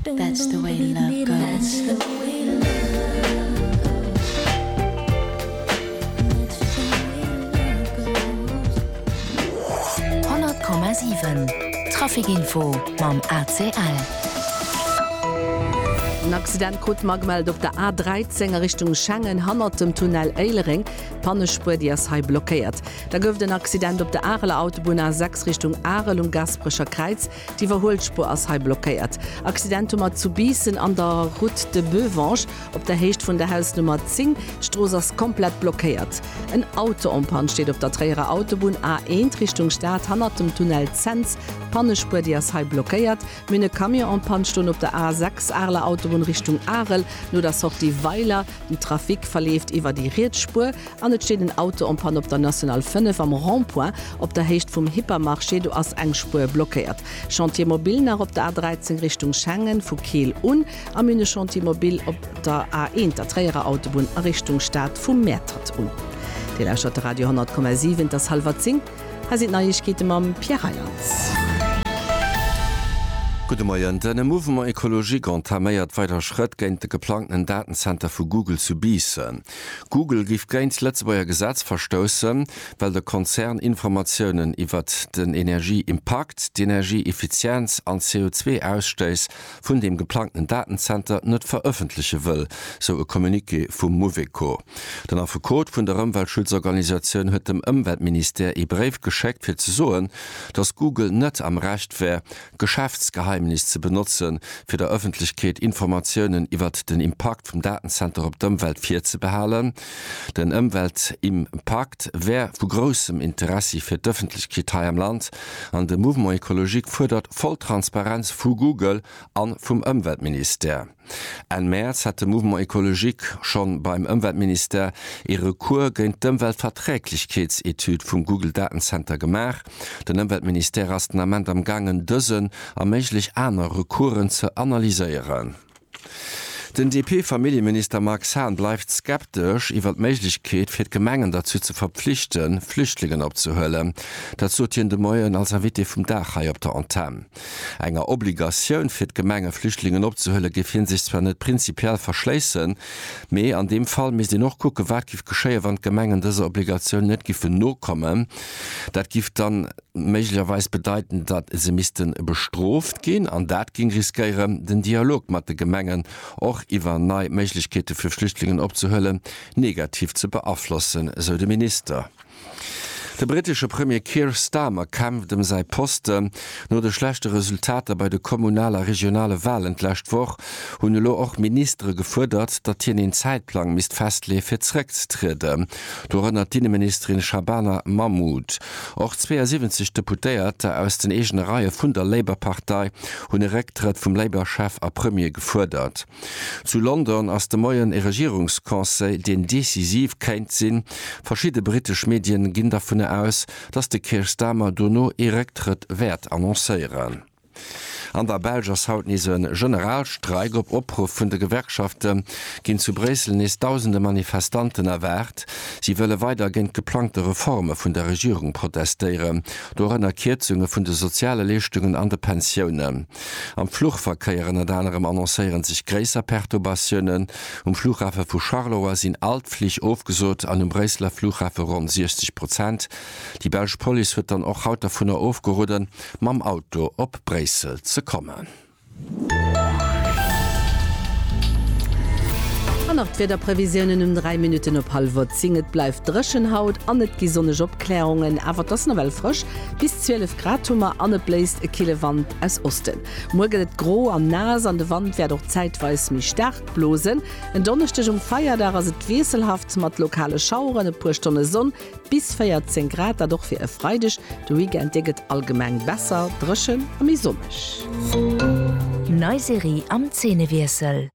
That's the way love goes 100,7 Trafikinfo mam ACL. En Accident krut mer gemellt op der A13 a Richtung Schengen hannert dem Tunnel Éilereng. D'Pannespuer, déi ass hei blockéiert. Da gouf et en Accident op der Areler Autobunn A6 Richtung Arel um Gasperecher Kräiz. D'Iwwerhuelspuer ass hei blockéiert. Accident hu mer zu Biissen an der Route de Beuvange op der Héicht vun der Hausnummer 10. D'Strooss ass komplett blockéiert. En Auto en Panne steet op der Tréierer Autobunn A1 Richtung Stad hannert dem Tunnel Cents. D'Pannespuer déi ass hei blockéiert. Mir hunn e Camion en Panne stoen op der A6 Areler Autobunn Richtung Arel no der Sortie Weiler. Den Trafic verleeft iwwer déi riets Spuer. An et steet en Auto en panne op der National 5 am Rond-point op der Héicht vum Hypermarché. Do ass eng Spuer blockéiert. Chantier mobil nach op der A 13 Richtung Schengen, vu Keel un, a Mine Chantier mobil op der A 1, der Tréierer Autobunn, a Richtung Stad, vu Mäertert un. Dir lauschtert de Radio 100,7. Et ass hallwer 10. Hei sinn d'Neiegkeete mam Pierre Reyland. Gudde Moien. De Mouvement Ecologique entaméiert weider Schrëtt géint de geplangten Datenzenter vu Google zu Biissen. Google géif géint d'Lëtzebuerger Gesetz verstoussen, well de Konzern Informatiounen iwwert den Energieimpakt, d'Energieeffizienz an d'CO2-Ausstéiss vun dem geplangten Datenzenter net verëffentleche wëll, sou e Communiqué vum Mouveco. Den Affekot vun der Ëmweltschutzorganisatioun huet dem Ëmweltministère ee Bréif geschéckt, fir ze soen, datt Google net am Recht wär, Geschäftsgeheimnis ze benotzen, fir der Ëffentlechkeet Informatiounen iwwert den Impakt vum Datenzenter op d'Ëmwelt virzebehalen. Den Ëmweltimpakt wär vu groussem Interessi fir d'Ëffentlechkeet hei am Land an de Mouvement Ecologique fuerdert voll Transparenz vu Google a vum Ëmweltministère. Enn Mäerz hat de Mouvement Ecologique schonn beim Ëmweltministère ee Recours géint d'Ëmweltverträglechkeetsetüd vum Google Datenzenter gemaach. Den Ëmweltministère ass den Ament am gaangen dësen a méiglech aner Recoursen ze analyséieren. Den DP-Familljeminister Marx Hahn bleift skeptesch iwwer d'Méiglechkeet fir d'Gemengen derzou ze verpflichten, Flüchtlingen opzehuelen. Dat sot hien de Moien als Invité vum Dag hei op der Antenn. Enger Obligatioun fir d'Gemenge Flüchtlingen opzehuelen, géif hie sech zwar net prinzipiell verschléissen, mee an deem Fall misst een och kucken, wat giff geschéien, wann d'Gemengen dëser Obligatioun net giffen nokommen. Dat giff dann méiglecherweis bedeiten, datt se misste bestrooft ginn, an dat géing riskéieren, den Dialog mat de Gemengen, och iwwer nei Méiglechkeete fir Flüchtlingen opzehuelen, negativ ze beaflossen, sou de Minister. De brittesche Premier Keir Starmer kämpft ëm säi Posten. No de schlechte Resultater bei de Kommunal a Regionale Walen d'lescht Woch hunn elo och Ministere gefuerdert, datt hien een Zäitplang misst festleeë fir zeréckzetrieden. Dorënner d'Inneministerin Shabana Mahmood. Och 72 Deputéierter aus den eegene Reie vun der Labour-Partei hunn e Récktrëtt vum Labour-Chef a Premier gefuerdert. Zu London ass de Moien e Regierungsconseil, deen decisiv kéint sinn. Verschidde britesch Medien ginn dervun aus, datt de Keir Starmer dono ee Récktrëtt wäert annoncéieren. An der Belsch ass haut nees e Generalstreik. Op Opruff vun de Gewerkschafte ginn zu Bréissel nees dausende Manifestanten erwaart. Si wëlle weider géint d'geplangte Reforme vun der Regierung protestéieren, dorënner Kierzunge vun de soziale Leeschtungen an de Pensiounen. Am Fluchverkéier ënnert anerem annoncéieren sech gréisser Perturbatiounen. Um Flughafe vu Charleroi sinn all d'Flich ofgesot an um Bréisseler Flughafe ronn 60 Prozent. Déi belsch Police huet dann och haut dovunner ofgeroden, mam Auto op Bréissel ze kommen. An nach d'Wiederprevisiounen um 3 Minutten op hallwer 10. Et bleift dréchen haut an et gi sonneg Opklärungen, awer et ass nawell frësch. Bis 12 Grad hu mer an et bléist e kille Wand aus Osten. Muer gëtt et gro an naass an de Wand wäert och zäitweis méi staark blosen. En Donneschdeg um Feierdag ass et wiesselhaft mat lokale Schaueren, e puer Stonne Sonn bis 14 Grad. Dat och fir e Freideg. De Weekend dee gëtt allgemeng besser dréchen a méi sonneg. Nei Serie am Zeenewiessel.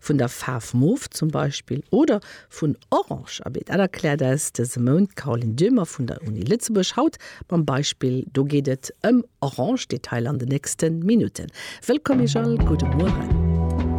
vun der Faarf Mof zum Beispill oder vun Orange a Beet, dat erkläert eis dëse Mount d'Caroline Döhmer vun der Uni Lëtzebuerg, haut mam Beispill Do geet et ëm Orange. Detailer an den nächste Minutten. Wëllkomm iech all, gudde Mueren.